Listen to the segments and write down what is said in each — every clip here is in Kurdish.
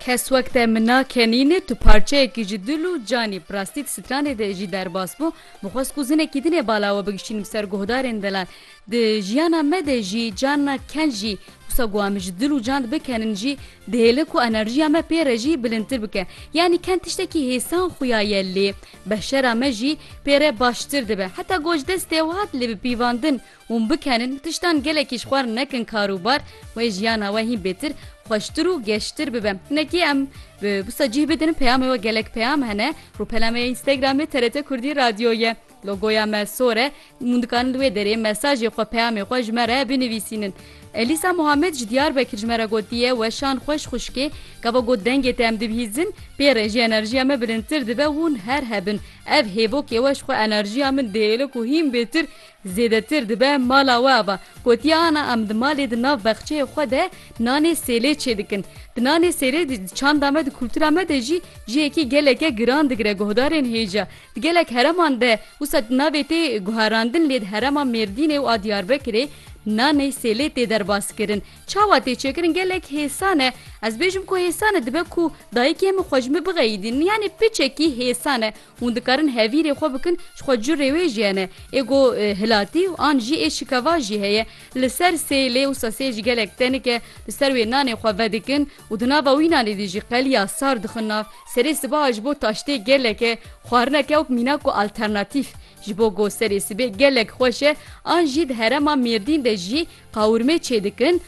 Kes wek te min na kenîne tu parçeyekî ji dil û canî bi rastî di stranê de jî derbas bû min xwest ku zinekî din ê bala we bigişînim ser guhdarên delal di jiyana me de jî carna ken jî wisa ku em ji dil û can bikenin jî dihêle ku enerjiya me pê re jî bilindtir bike yanî ken tiştekî hêsan xuya ye lê beşera me jî pê re baştir dibe heta goj destê wiha dilê bi pîvandin Hûn bikenin, tiştan gelekî ji xwe nekin kar û bar wê jiyana we hîn bêtir, xweştir û geştir bibe. Hinekî em bi wisa cih bidin peyamê we gelek peyam hene. Rûpelame ya Instagramê TRT Kurdî Radyo ye. Logoya me sor e. Hûn dikarin li wê derê mesajê xwe peyamê xwe ji me re binivîsînin. Elîsa Muhammed ji Diyarbekir ji me re gotiye, Weşan xweş xwişkê, gava got dengê te em dibihîzin, pê re jî enerjiya me bilindtir dibe, hûn her hebin. Ev hêvokê we ji xwe enerjiya min dihêle ku hîn bêtir Zêdetir dibe mala we ava. Gotiye ana em di malê di nav bexçeyê xwe de nanê sêlê çêdikin. Di nanê sêlê di çanda me di kultura me de jî cihekî geleke giran digire guhdarên hêja. Di gelek hereman de wisa navê tê guherandin lê di herema Mêrdînê û a Diyarbekirê nanê sêlê tê derbaskirin. Çawa tê çêkirin gelek hêsan e. Ez bêjim ku hêsan e dibe ku dayikê min xwe ji min bixeyidînin yanê piçekî hêsan e Hûn dikarin hevîrê xwe bikin ji xwe curê wê jî hene ê ku hilatî û an jî ê şikeva jî heye. Li ser sê lê wisa sê jî gelek tenik e. Li ser wê nanê xwe vedikin û di nava wî nanê de jî qeliya sar dixin nav. Serê sibaha ji bo taştê gelek e. Xwarineke wek mîna ku alternatîf ji bo ku serê sibê gelek xweş e. An jî di herema Mêrdîn de jî qawirmê çêdikin.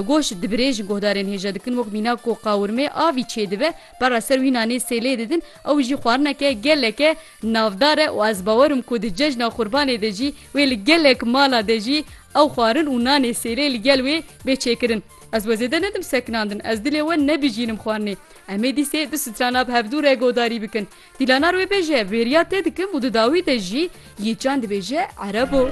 Goş dibirê ji guhdarên hêja dikin wek mîna ku qawirmê avî çêdibe pera ser wî nanê sêlê didin ew jî xwarineke geleke navdar e û ez bawer im ku di cejna qurbanê de jî wê li gelek mala de jî ew xwarin û nanê sêlê li gel wê bê çêkirin. Ez we zêde nedim sekinandin ez dilê we nebijînim xwarinê em ê dîsê du strana bi hevdû re godarî bikin. Dîlanar wê bêje bêriya tê dikim û di dawî de jî yê çand dibêje erebo.